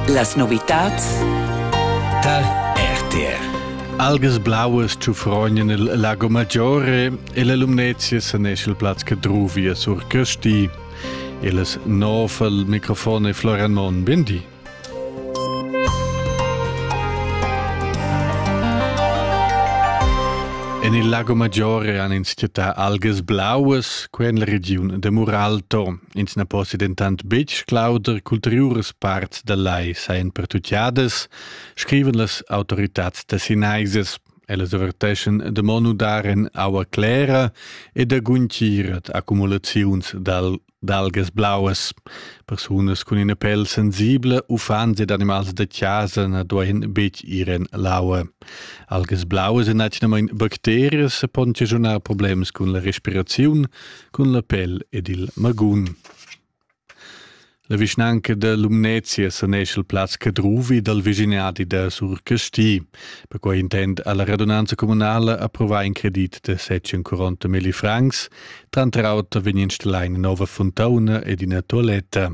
Las novitads tar RTR. Algas blauas tschufrognan il Lago Maggiore e la Lumnezia sanesce il plaz che druvia sur Kösti. Elas nov al microfon e Florian Mon, bindi. En il Lago Maggiore han ins chattà algas blauas, qua en la regiun de Muralto. Ins na possi dentant betg clauder ch'ulteriuras parts da lai sajan pertutgadas, scrivan las autoritads tessinaisas. Ellas averteschan da mo nudar en aua clera e da guntgir ad accumulaziuns d'algas blauas. Persunas cun ina pel sensibla, uffants ed animals da chasa na duain betg ir en l'aua. Algas blauas èn atgnamain bacterias e pon ocasionar problems cun la respiraziun, cun la pel ed il magun. La vischnanca da Lumnezia sanescha il plaz Cadruvi dal vischinadi da Sur Casti. Perquai intend ha la radunanza communala approvà in credit da 740 milli francs. Tranter auter vegn installà ina nova fontauna ed ina toaletta.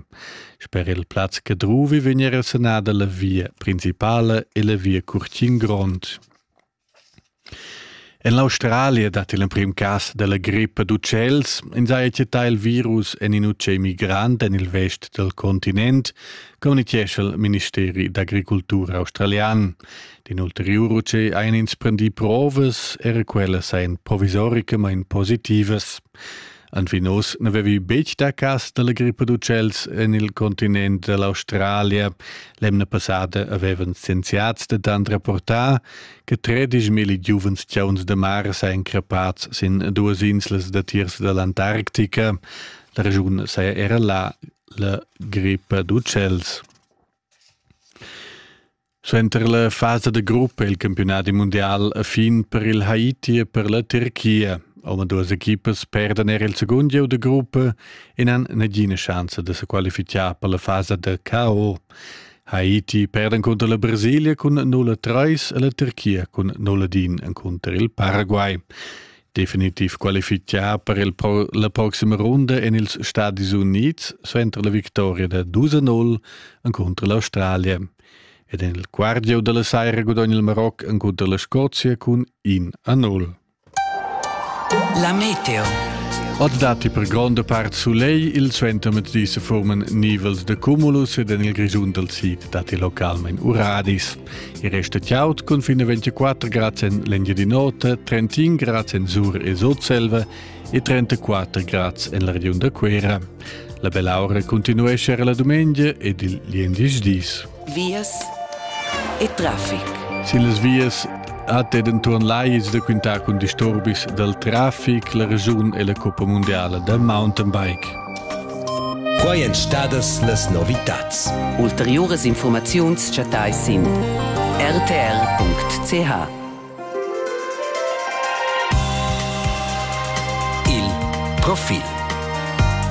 Sper il plaz Cadruvi vegn era sanada la via principala e la via Curtin Grond. En l'Australia dat il emprim cas dalla grippa d'utschels. Ins haja chattà il virus en in utschè migrant en il vest dal continent, communitgescha il ministeri d'agricultura australian. D'in ulteriur utschè hajan ins prendì provas, era quellas sajan provisorica, main positivas. Anfin oz n'avevi betg dà cas da la grippa d'utschels en il continent da l'Australia. L'emna passada avevan scienziads dentant rapportà che tredischmilli giuvens chauns da mar sajan crappads sin duas inslas datiers da l'Antarctica. La raschun saja era là la grippa d'utschels. Suenter la fasa da gruppa è il campiunadi mundial a fin per il Haiti e per la Turchia. Omaduas equipas perdan er il secund gieu da gruppa e n'han nagina chance da se qualificar per la fasa da KO. Haiti perda contro la Brasilia cun 0-3 e la Turchia cun 0-1 contro il Paraguay. Definitiv qualificar per il pro la prossima runda en ils Stati Uniti suenter la victoria da 2-0 contro l'Australia. Ed en il quart gieu da la saira gudogna il Maroc encunter la Scozia cun in a nul. La meteo. Od datti per gronda part sulegl, il suentermettdi se forman nivels de cumulus ed en il Grischun dal sid datti localment uradis. Il resto tiaut cun fino 24 grads en l'Engiadin'Ota, 31 grads en Sur e Sotselva e 34 grads en la regiun da Cuera. La bell'aura continuescha era la dumengia ed il liendisch dis. Vias e traffic. Sin las vias hat ed enturn lais da quintar cun disturbis dal traffic la regiun e la Coppa Mondiala da mountain bike. Quai èn stadas las novitads. Ulteriuras informaziuns chattais sin rtr.ch. Il profil